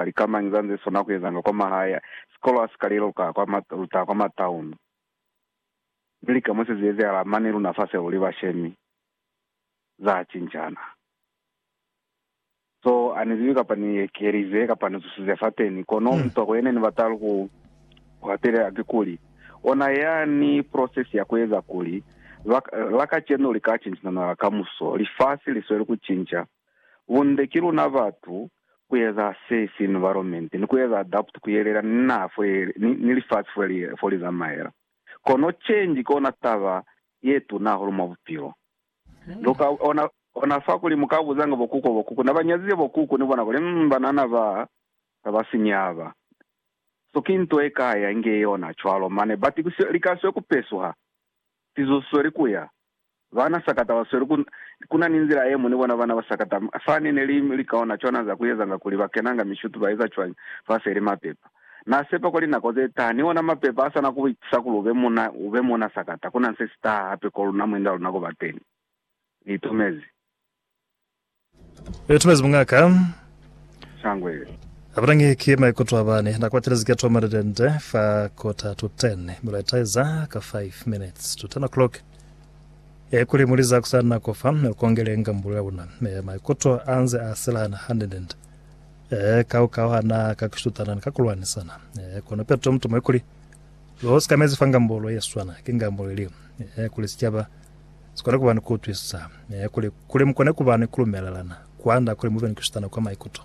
ba lika mañi za nze sona ku ezanga kwa mahaya, sikolo ha si ka leluka kwa ma luta kwa ma town. Mi lika mo se zi ezehala mane luna fase luli bashemi, za cincana. So ani zibi kapa ni ekelize kapa ni zusize fateni, kono mutwako yene ni bata ku hwatelela kikuli, ona yani process ya ku eza kuli, ba, la kacenu li ka cincana na la kamuso. Lifasi li sweli ku cinca. Bunde ki luna batu ku eza se si environment ni ku eza adapt ku yelela ni naha fo ye ni lifasi fo li fo li zamaela. Kono change kona taba ye tuna hahulu mwa bupilo. Lu ka ona ona fa kuli mu ka buzanga bo kuku bo kuku na ba nyazize bo kuku ni bona kuli umm banana ba sa ba sinya aba. So ki nto ye ka ya inge yona cwalo mane but ku se li ka swe ku pesuha sizusweli kuya Bana sakata ba sweli ku, ku na ni nzila yemwi ni bona bana ba sakata. Fa ne ne li likaona cwana za ku ezanga kuli ba kenanga mishutu ba eza cwañi fa feli mapepa. Na sepa kwa linako ze taha ni ona mapepa a sa na ku ku itisa kuli u be muna, u be muna sakata. Ku na se si taha hape ko luna mwi nda luna ku ba teni. Ni itumezi. Yo tumezi mungaka. Sangwe. Abutangi ki maikuto abani na kwatelezi ke toma litente fa quarter to 10 milo itaiza ka 5 minutes to 10 o'clock e kuli muliza kusana nako fa kongele ngambulu ya una me maikuto anze a selana handendende e ka ukauhana ka kushutana ka kulwanisana e kono peto mtumo e kuli lo sikamezi fa ngambulu ye swana ke ngambulu ili e kuli sicaba Si kona ku ba ni ku utwisisa, ee, kuli, kuli mu kone ku ba ni ku lumelelana, kwand'a kuli mu be ni ku shutana kwa maikuto.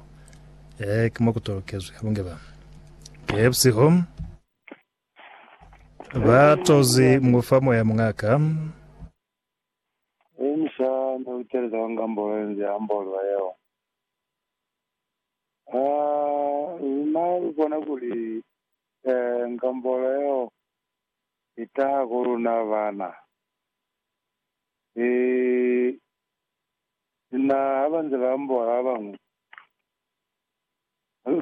Ee, ki mo ku tolokezwi. Lu nge ba. Ee, busihu, ba tozi mu fa Moya, Muña'ka. Ee, mi sa ne u teleza kwa ngambolo ye nze ambolwa yeo. Aa, luna lu bona kuli, ee, ngambolo yeo Ni taha ku luna bana. Ni, ni na, ha ba nze ba amboha ba bañwi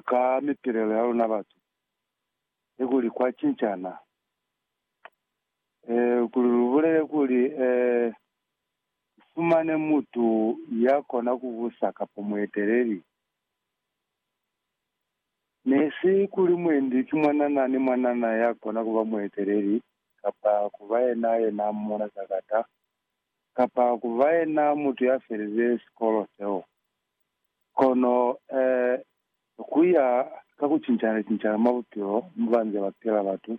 ka mipilelo ya luna batu, ni kuli kwa cincana, eh, kuli lu bulele kuli, eh, ku fumane mutu ya kona ku busa kapa mueteleli, Ne si kuli mwendi ki mwanana ni mwanana ya kona ku ba mueteleli, kapa ku ba yena yena mona sakata, kapa ku ba yena mutu ya felize sikolo seo. Kono, eh, ku ya ka ku cincana-cincana mwa bupilo mo ba nze ba pila batu,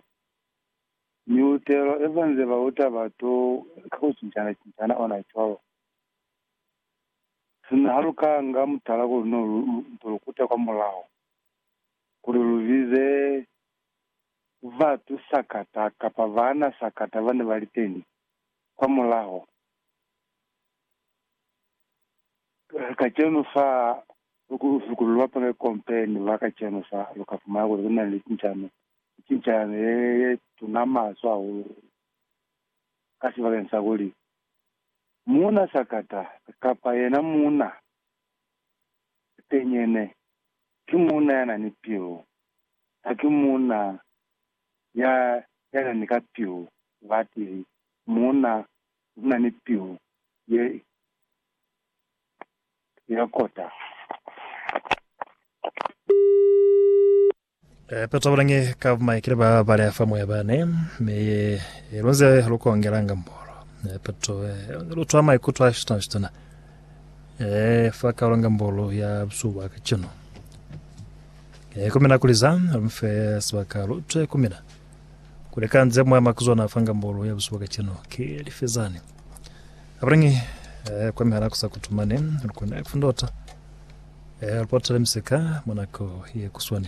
miutelo ye ba nze ba uta batu ka ku cincana-cincana ona cwalo. Sina ha lu ka nga mutala kuli no lu nto lu kuta kwa mulaho, kuli lu bize batu sakata kapa baana sakata ba ne ba li teni kwa mulaho, kacenu fa kuli lu bapale kompe ni ba kacenu fa, lu ka fumana kuli ku na ni cincano, ni cincano ye tuna maso hahulu, ka sibakeng sa kuli Muuna sakata kapa yena muuna tenyene ki muuna ya na ni pilu, haki muuna ya ya na ni ka pilu batili, muuna u na ni pilu ye ya kota. Petro a bulange ka bumaikile ba bali a fa moya bane, mi ye ilunze lukongela nga mbolo. Petro lutwa maikuto a shitana shitana fa kalo nga mbolo ya busuku bwa kacenu. Kumina kuliza mfe sibaka lutwe kumina kuleka nze moya makuzwana fa nga mbolo ya busuku bwa kacenu ki lifezani. Abulange kwa mihala kusa kutumane lukone kufundota. Ee, Lupotele misika mwa nako ye kuswani.